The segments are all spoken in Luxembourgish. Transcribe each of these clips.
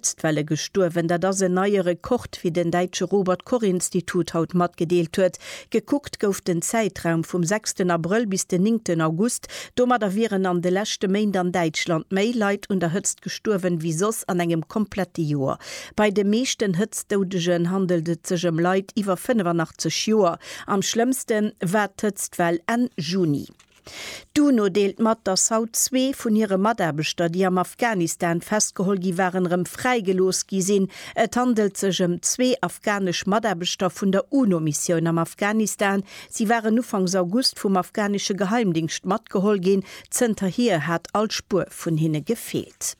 D'Welle gestuerwen, dat ass en neie Rekord, wéi den däitsche Robert-Koch-Institut haut matgedeelt huet. Gekuckt gouf den Zäitraum vum sechsten Abrëll bis den néngten August. Domadder wieren an de leschte Méint an Däitschland méi Leit un der Hëtzt gestuerwen, wéi soss an engem komplette Joer. Bei de meeschten Hëtztdoudegen handelt et sech ëm Leit iwwer 85 Joer. Am schlëmmste war d'Hëtztwell Enn Juni. D'UNO deelt mat, datt haut zwee vun hire Mataarbechter, déi am Afghanistan festgeholl gi waren, erëm fräigelooss gi sinn. Et handelt sech ëm zwee afghanesch Mataarbechter vun der UNO-Missioun am Afghanistan. Si waren ufanks August vum afghanesche Geheimdingscht matgeholl ginn. Zënterhier hat all Spuer vun hinne gefeelt.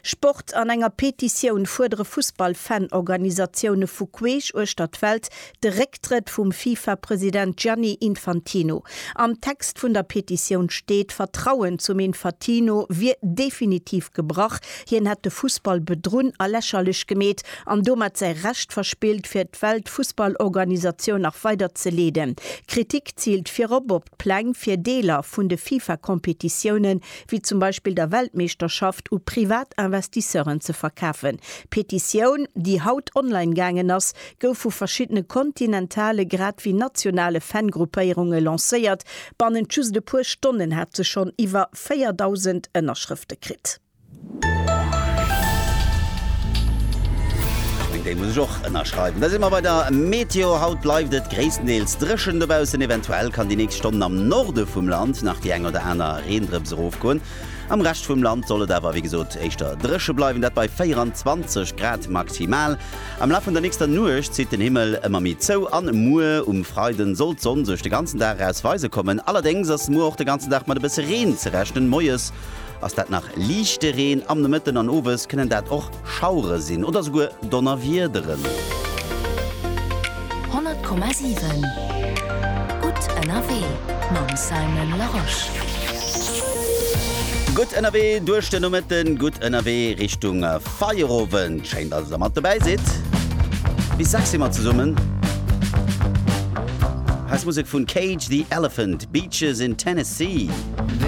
Sport, An enger Petitioun fuerdere Fussball-Fan-Organisatioune vu queesch uechter d'Welt de Récktrëtt vum FIFA-President Gianni Infantino. Am Text vun der Petitioun steet, d'Vertrauen zum Infatino wier definitiv gebrach, hien hätt de Fussball bedrunn a lächerlech gemeet an domat säi Recht verspillt, fir d'Weltfussballorganisatioun nach weider ze leeden. D'Kritik ziilt virop op. D'Pläng fir Deeler vun de FIFA-Competitiounen, wéi zum Beispill der Weltmeeschterschaft, u privat Investisseuren ze verkafen. D'Petitioun, déi haut online gaangen ass, gouf vu verschiddene kontinentale grad wéi nationale Fan-Gruppéierunge lancéiert. Bannent just e puer Stonnen hat se schonn iwwer 4.000 Ënnerschrëfte kritt. Déi muss ech och ënnerschreiwen. Da si mer bei der Meteo. Haut bleift et gréisstendeels dréchen dobaussen. Eventuell kann déi nächst Stonnen am Norde vum Land nach déi eng oder aner Reendrëps erofgoen. Am Rescht vum Land soll et awer wéi gesot éischter dréche bleiwen, dat bei 24 Grad maximal. Am Laf vun der nächster Nuecht zitt den Himmel ëmmer méi zou an muer um Freiden soll d'Sonn sech de ganzen Dag eraus weise kommen. Allerdéngs ass muer och de ganzen Dag mat e bësse Reen ze rechnen, moies Ass dat nach liichte Reen, am Nomëtten an owes kënnen dat och Schauere sinn oder souguer Donnerwiederen. 100,7 Gutt ënnerwee mam Simon Larosche. Gutt ënnerwee duerch den Nomëtten, gutt ënnerwee Richtung Feierowend. Schéin, dass Der mat dobäi sidd. Bis 6 si mer zesummen. Hei ass Musek vun Cage the Elephant, Beaches in Tennessee.